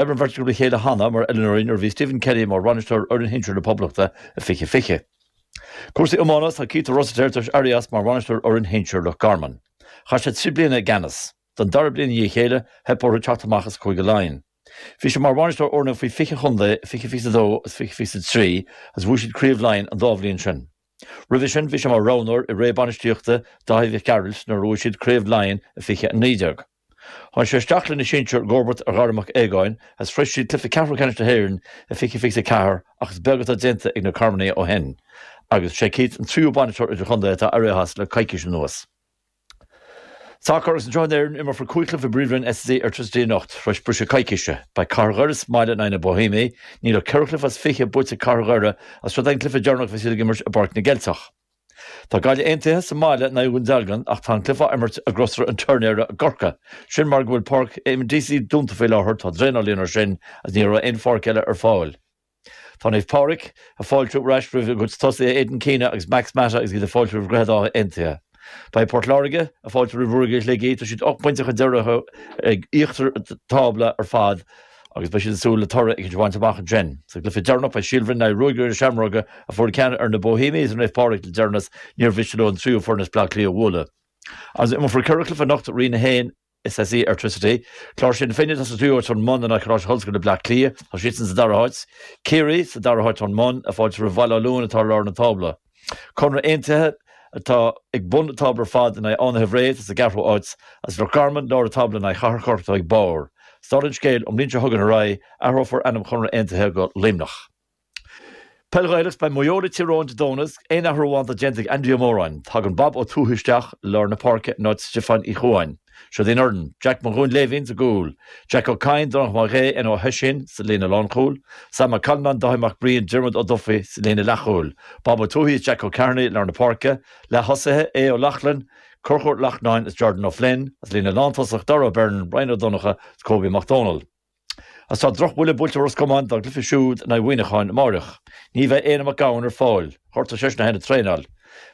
ar an bheirt acu le chéile cheana, mar oiliúnóirí, nuair a bhí Stephen Kenny mar bhainisteoir fhoireann shinsir na Poblachta i 20 20. Cúrsaí iomána Tá Keith Rossiter tar éis éirí as mar bhainisteoir fhoireann shinsir Loch Garman. Chaith sé trí bliana i gceannas. Don dara bliain i ndiaidh a chéile, theip orthu teacht amach as Cúige Laighean. Bhí sé mar bhainisteoir fhoirne faoi 20 an chontae i 20 22 agus 20 23 agus bhuaigh siad Craobh Laighean an dá bhliain sin. Roimhe sin, bhí sé mar roghnóir i ré bainistíochta Dáithí Mhic Gearailt nuair a bhuaigh siad Craobh Laighean i 20 19. Tháinig sé isteach leis na sinsir i gcomharbacht ar Dhara Mac Aogáin is shroich siad cluiche ceathrú ceannais na hÉireann i fiche fiche a ceathair ach is beag atá déanta ag na Carmanaigh ó shin agus is é Keith an tríú bainisteoir idirchontae atá éirithe as le coicís anuas. Sacar agus anseo in Éirinn Imreofar cúig chluiche i bPríomhroinn SSE Airtricity anocht tar éis briseadh coicíse. Beidh Cathair Dhoire sa mbaile in aghaidh na Bohemians. Níl ach ceithre chluiche as fiche buaite ag Cathair Dhoire is seod é an cluiche deireanach a bheas siad ag imirt i bPáirc na gCeilteach. Tá Gaillimh Aontaithe sa mbaile in aghaidh Dhún Dealgan ach tá an cluiche á imirt i gCrosaire an Tuirnéara i gCorcaigh. Sin mar go bhfuil Páirc Eamonn Deacy dúnta faoi láthair, tá draenáil ann ar sin agus ní raibh aon pháirc eile ar fáil. Tá Naomh Pádraig ag fáiltiú ar ais roimh a gcuid tosaithe Aidan Keena agus Max Mata agus iad ag fáiltiú roimh Dhroichead Átha Aontaithe. Beidh Port Láirge ag fáiltiú roimh Ruagairí Shligigh, tá siad ocht bpointe chun deiridh orthu ag íochtar an tábla ar fad, agus beidh siad ag súil le toradh éicint a bhaint amach ansin. Sa gcluiche deireanach beidh Síol Bhroin in aghaidh Ruagairí na Seamróige, a fuair ceann ar na Bohemians is Naomh Pádraig le deireanas, níor mhiste leo an tríú foireann as Bleá Cliath a bhualadh. Agus imreofar ceithre chluiche anocht, Roinn 1, SSE Airtricity, Cláirsigh na Finne atá sa tríú háit ón mbun in aghaidh Choláiste Ollscoile Bleá Cliath, tá siadsan sa dara háit, Ciarraí, sa dara háit ón mbun, ag fáiltiú roimh Bhaile Átha Luain atá ar lár na tábla. Conradh Aontaithe atá ag bun an tábla ar fad in aghaidh Fhánaithe Bhré atá sa gceathrú áit is Loch Garman, lár an tábla in aghaidh Chathair Chorcaí atá ag barr. Is dála an scéil, ón mbliain seo chugainn ar aghaidh, athrófar ainm Chonradh Aontaithe go Luimneach. Peil Ghaelach, Is beidh Maigh Eo le Tír Eoghain Dé Domhnaigh, aon athrú amháin atá déanta ag Andy Ó Móráin. Tagann Bob Ó Tuathaigh isteach i lár na páirce in áit Stiofáin Uí Chuain. Siod í an fhoireann, Jack Mac Dhuinnshléibhín sa gcúl, Jack Ó Cadhain, Donnchadh Mac Aodh, Éanna Ó hOisín sa líne lánchúil, Sam Ó Callanáin, Dáithí Mac Briain, Diarmuid Ó Dufaigh sa líne leathchúil, Bob Ó Tuathaigh is Jack Ó Cearnaigh i lár na páirce, leath-thosaithe, Aodh Ó Lochlann, Conchúr Ó Lachtnáin is Jordan Ó Floinn, sa líne lántosach, Dara Ó Beirn, Ryan Ó Donnchadha is Kobe Mac Dónaill. Agus tá drochbhuille buailte ar Ros Comáin dá gcluiche siúd in aghaidh Mhuineacháin amáireach. Ní bheidh Éanna Mac Gabhann ar fáil, ghortaigh seisean a thine ag traenáil.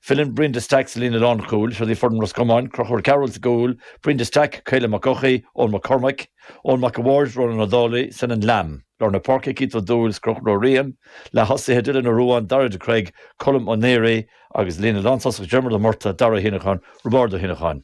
Filleann Brian Stack sa líne lánchúil, seod í foireann Ros Comáin, Crochúr Ó Cearbhaill sa gcúl, Brian Stack, Caelim Mac Eochaidh, Eoin Mac Cormaic, Eoin Mac a' Bhaird, Ronan Ó Dálaigh, Senan Lambe. Lár na páirce, Keith Ó Dúill 's Crochúr Ó Riain, leath-thosaithe, Dylan Ó Ruáin, Daire de Creag, Colm Ó Náraigh, agus líne lántosach, Diarmuid Ó Murtagh, Dara Ó hÉineacháin, Roibeárd Ó hÉineacháin.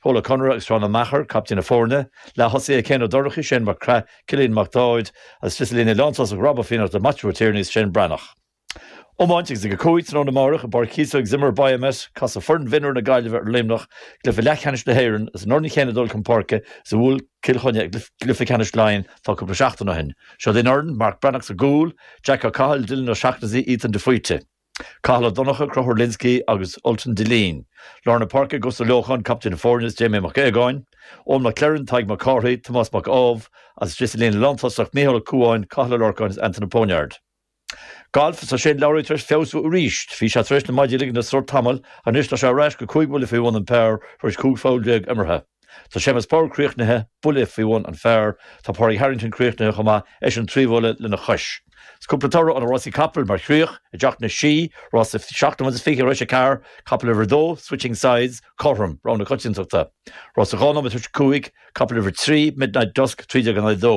Pól Ó Conaire agus Seán Ó Meachair, caiptín na foirne, leath-thosaithe Céin Ó Dorchaí, Séan Mac Craith, Cillian Mac Dáid, agus sa líne lántosach Rob Ó Fiannachta, Maitiú Ó Tiarnaigh is Séan Breathnach. Iomáint agus ag a cúig tráthnóna amárach i bPáirc Chíosóg Zimmer Biomet, casfaidh foireann mhionúir na Gaillimhe ar Luimneach i gcluiche leathcheannais na hÉireann, is an fhoireann chéanna ag dul chun páirce is a bhuail Cill Chainnigh i gcluiche ceannais Laighean tá cúpla seachtain ó shin. Seod í an fhoireann, Marc Breathnach sa gcúl, Jack Ó Cathail, Dylan Ó Seachnasaigh, Ethan de Faoite. Cathal Ó Donncha, Conchúr Lynskey, agus Ultan Dillane, Lár na Páirce, Gus Ó Leocháin, Caiptín na Foirne, is Jamie Mac Aodhagáin, Eoin McLerran, Tadhg Mac Cárthaigh, Tomás Mac Ádhaimh, agus sa líne lántosach, Micheál Ó Cúáin, Cathal Ó Lorcáin, is Anton de Poniard. Galf, is tá Shane Lowry tar éis feabhsú arís. Bhí sé tar éis na maidí a ligean le sruth tamall, anois tá sé ar ais go cúig bhuille faoi bhun an par tar éis cúig pholl déag imeartha. Tá Séamus Power críochnaithe, buille faoi bhun an phar. Tá Pádraig Harrington críochnaithe chomh maith, eisean trí bhuille lena chois. Is cúpla toradh ó na rásaí capall mar chríoch, i dTeach na Sí, rása seacht nóiméad is fiche tar éis a ceathair, capall uimhir a dó, Switching Sides, cothrom, rogha na coitiantachta. Rása dhá nóiméad tar éis a cúig, capall uimhir a trí, Midnight Dusk, trí déag in aghaidh a dó.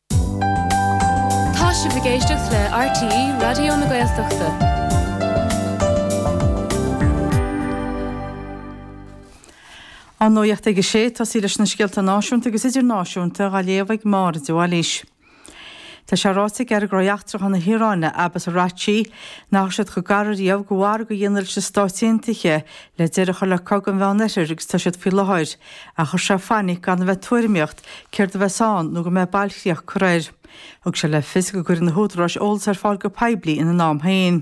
Tá sibh ag éisteacht le RTÉ Raidió na Gaeltachta. An Nuacht ag a 6, ag tosaí leis na scéalta náisiúnta agus idirnáisiúnta, á léamh ag Máire de Bhailís. Tá sé ráite ag Aire Gnóthaí Eachtracha na hIaráine, Abbas Araghchi, nach raibh siad chomh gar ariamh do mhargadh a dhéanamh leis na Stáit Aontaithe le deireadh a chur le Cogadh an Mheánoirthir agus atá siad faoi láthair, ach chuir sé fainic gan a bheith ag tuairimíocht céard a bheas ann nó go mbeidh bailchríoch curtha air. Thug sé le fios go gcuirfidh na húdaráis eolas ar fáil go poiblí ina n-am féin.